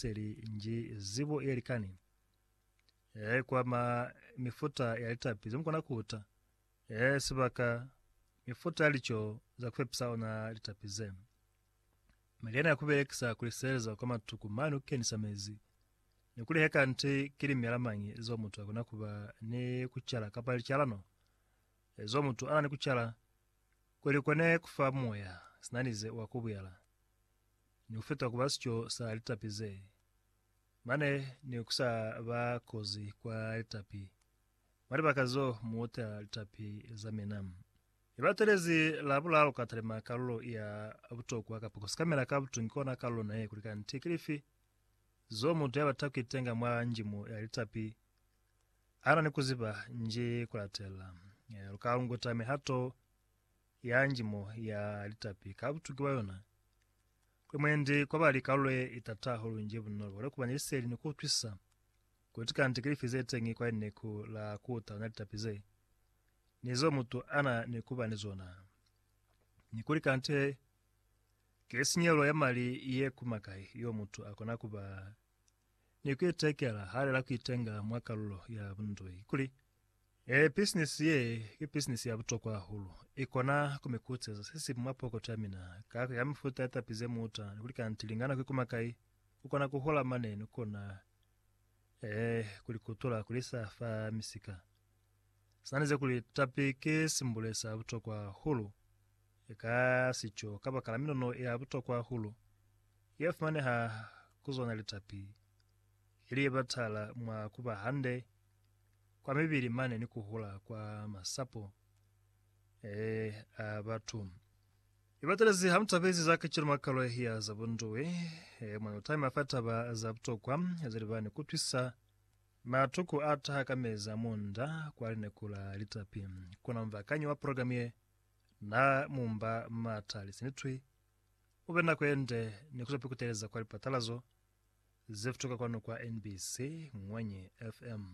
seli nji zibo ye likani e kwama mifuta ya litapi zemukona kuta e sibaka mifuta ya lico za kupepisa ona litapi ze meliana ya kubelekisa kuliseleza kwa matuku mane kukenisa mezi ni kulihe kanti ki limela mañi zo mutu akona kuba ni kucala kapa licalano ezo mutu ana ni kucala kuli kone kufa moya sinanize wa kubuyala ni ku feta kuba sico sa litapi ze, mane ni ku sa ba kozi kwa litapi, mwa libaka zo mu uta litapi za mina. I batelezi la bulalu ka talima kalulo ya butokwa kapa ku sikamela ka butungi kona kalulo naye kuli kanti ki lifi zo mutu ya bata ku itenga mwa njimo ya litapi ana ni ku ziba nji ku latela. Lu ka lunguta mihato ya njimo ya litapi ka butuki bwa yona, kuli mwendi kwa ba li kalulo ye itata hahulu nji bunolo bwa likubanya liseli ni kuutwisisa kuti kante kilifi zeteñi kwa lineku la kuutalana litapi ze ni zeo mutu ana ni kuba ni zona, ni kuli kante ki sinyelo ya mali ye kuma kai yeo mutu akona kuba ni ku itekela hali la ku itenga mwa kalulo ya bundoi kuli, E, pisinisi ye ki pisinisi ya butokwa hahulu. I kona ku mi kuceza se si mwa pokoto ya mina, ka ku ya mifuta ya tapi ze muta, ni kuli kanti lingana ku ikuma kai, ku kona ku hola mane, ni kona, ee, ku li kutula ku li isa fa misika. Swanezi kuli tapi ki simbule sa butokwa hahulu ka sico kabakala minono ya butokwa hahulu ye fumaneha ku zona litapi, ili ye batala mwa kuba hande kwa mibili mane ni kuhula kwa masapo a batu. Ibatelezi ha mutapezi za kacenu mwa kalo ye ya za bunduwi, mwa lutami mwa fa taba za butokwa ze libani kutwisa. Matuku a taha ka mezi a munda kwa lineku la litapi. Kona mubakanyi wa programi ye na mumba m'ata lisi ni twi. U be nako ye nde ni kuzapi kuteleza kwa lipatalazo ze futuka kwanu kwa NBC Ngwenyi FM.